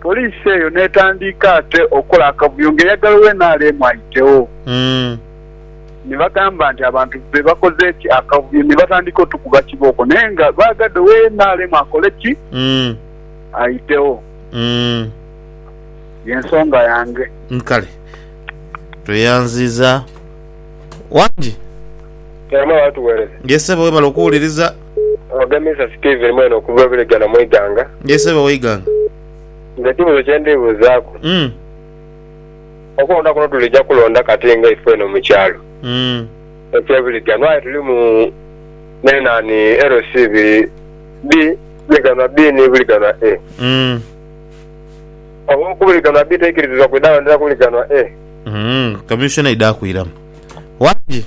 Poliisi eyo n'etandiika ate okola akavuyo ng'eyagala owa nrm ayitewo. Ni bagamba nti abantu be bakoze ki akavuyo ni batandika otukuba kibooko naye nga baagadde owa nrm akole ki? Ayitewo. Y'ensonga yange. Kale. Tweyanziiza. Wangi. Mukama atuwereze. Ye ssebo webale okuwuliriza. Oghagamiza Steven mwene okuva e Bulega na Mwiganga. Yee sebo Waiganga. Nze ekibuzo kyendibuzaaku. Umm. Okulonda kuno tulija kulonda kati nga ifwe eno mukyalo. Umm. Ekye Buliga no aye tulimu ne nani LC ibiri bi Buliganwa B ni Buliganwa A. Umm. Oba oku Buliganwa B teikirizibwa kwidha londera ku Buliganwa A. Umm. Commissioner aidha kwiramu. Wangi.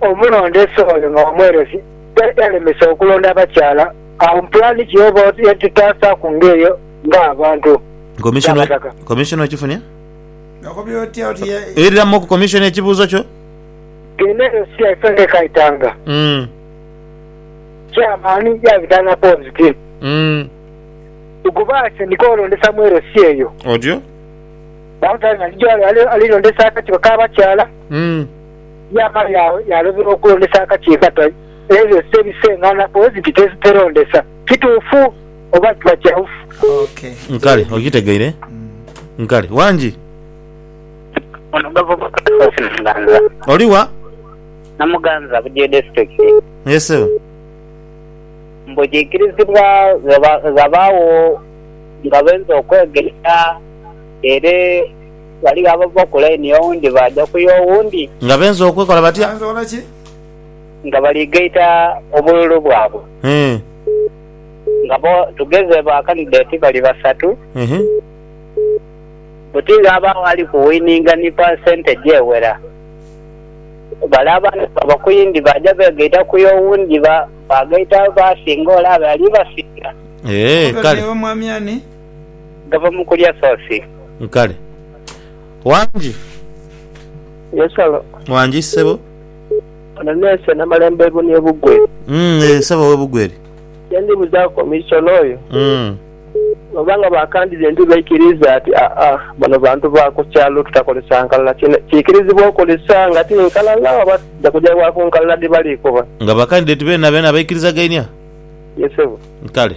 Omulondeesa oyo nga wa mweresi yali yalemesa okulonda abakyala, agho mu pulaani ki oba oti yatutaasaaku ng'eyo ng'abantu? Komisona N'abataka. komisona okifunye? Okobye otya oti ye Iriramu oku komisona ekibuuzo kyo. Eno eyo si yaife ng'ekaitanga. Mm, Chairman yabita n'apoozi ti, mm, Tukubaase ni kwolondesa mweresi eyo. Otyo? Bamutwale nga ali gy'ali ali- alilondesa akakiiko k'abakyala. Mm. Yaamala yaagho yaalomerwa okulondesa akakiiko akatali ebyo ose ebiseng'ana pulezidenti teziperondesa. Kituufu oba kiba kyaufu? Kale okitegeire. Kale wangi. Ono gavumenti Cleophas Namuganza. Oli wa? Namuganza, Bugyo District. Yee ssebo. Mbu kiikirizibwa ghabaagho nga bainza okwegeita ere. Ghaligho abava ku laini y'owundi baaja ku y'owundi. Nga benze okwekola batya? Nga bali gaita obululu bwabwe. Nga bo, tugeze ba kandideeti bali basatu, buti ghabaagho ali ku wininga ni pa sente egyewera. Bale abandi nga bava ku yindi baaja beegaita ku y'owundi, ba, baagaita abaasinga ole abe ali basinga. Eeh, kale. gava mu kulya sosi. Kale. Wangi. Yesolo. Wangi ssebo. Ono neese Namalembo ebuni e Bugweri. Umm eeh ssebo owe Bugweri. Kyendi buzaaku omuisona oyo. Umm. Oba nga bakandhidhi endi baikiriiza ati aa bano bantu ba ku kyalo tutakolesa nkalala kino kiikirizibwa okolesa nga ti nkalala oba tuja kuja wa ku nkalala dhi bali kuba. Nga bakandhidhi ti beenabeena baikiriza gainia? Ye ssebo. Kale.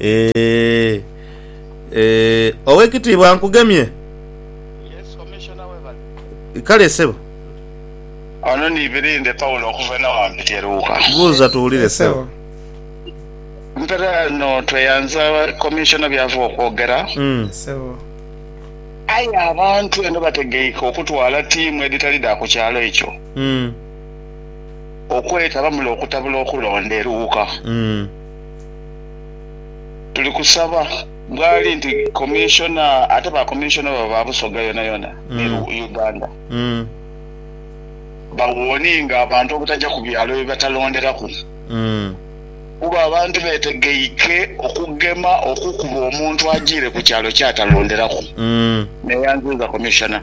Eh, eh, owekitiibwa nkugemye Yes, Commissioner webale. kale sebo Ono ni Birinde Paulo okuva eno ghambi Teruuka. buuza tuwulire sebo Mpera no tweyanza Commissioner byava okwogera. Mm. Sebo. Aye abantu eno bategeike okutwala tiimu edhitali dha ku kyalo ekyo. Mm. okwetaba mule okutabula okulonda e Luuka. Tuli kusaba bwali nti Commissioner ate ba Commissioner baba ba Busoga yonayona ni Uganda ba warninge abantu obutaja ku byalo bye batalonderaku kuba abantu betegeike okugema okukuba omuntu ajiire ku kyalo kyatalonderaku. Neyanziiza Commissioner.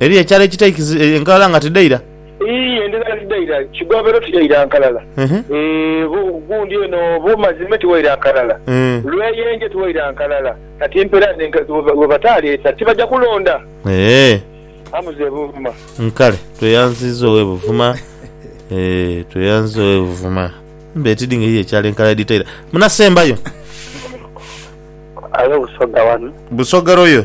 Eriyo ekyalo ekitaikiriza enkalala nga tidhaira? Ii, Endhala tidhaira kigobeero, tiyaira nkalala. Ii, Gundi eno bu mazime tiwaira nkalala. Ii, Lweyenje tiwaira nkalala. Kati mpera bwe bataaleta tibaja kulonda? Ee. Amuze Buvuma. Nkale, tweyanziza owe Buvuma. Ee, tweyanziza owe Buvuma. Mbe tidhi nga eriyo ekyalo enkalala edhitaira. Munasembayo. Aye Busoga wano. Busoga royo.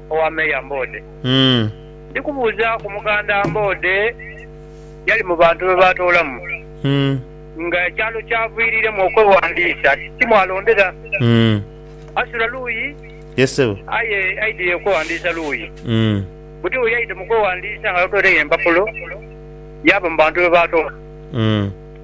owa Meeya Mboode. Ndi kubuuzaaku Muganda Mboode yali mu bantu be baatoolamu nga ekyalo ky'aviiriremu okwewandiisa ti mwalondera. Asula luuyi? Aye aidhie okwewandiisa luuyi. Buti bwe yaidha mu kwewandiisa nga totweiregho empapulo, yaava mu bantu be baatoolamu.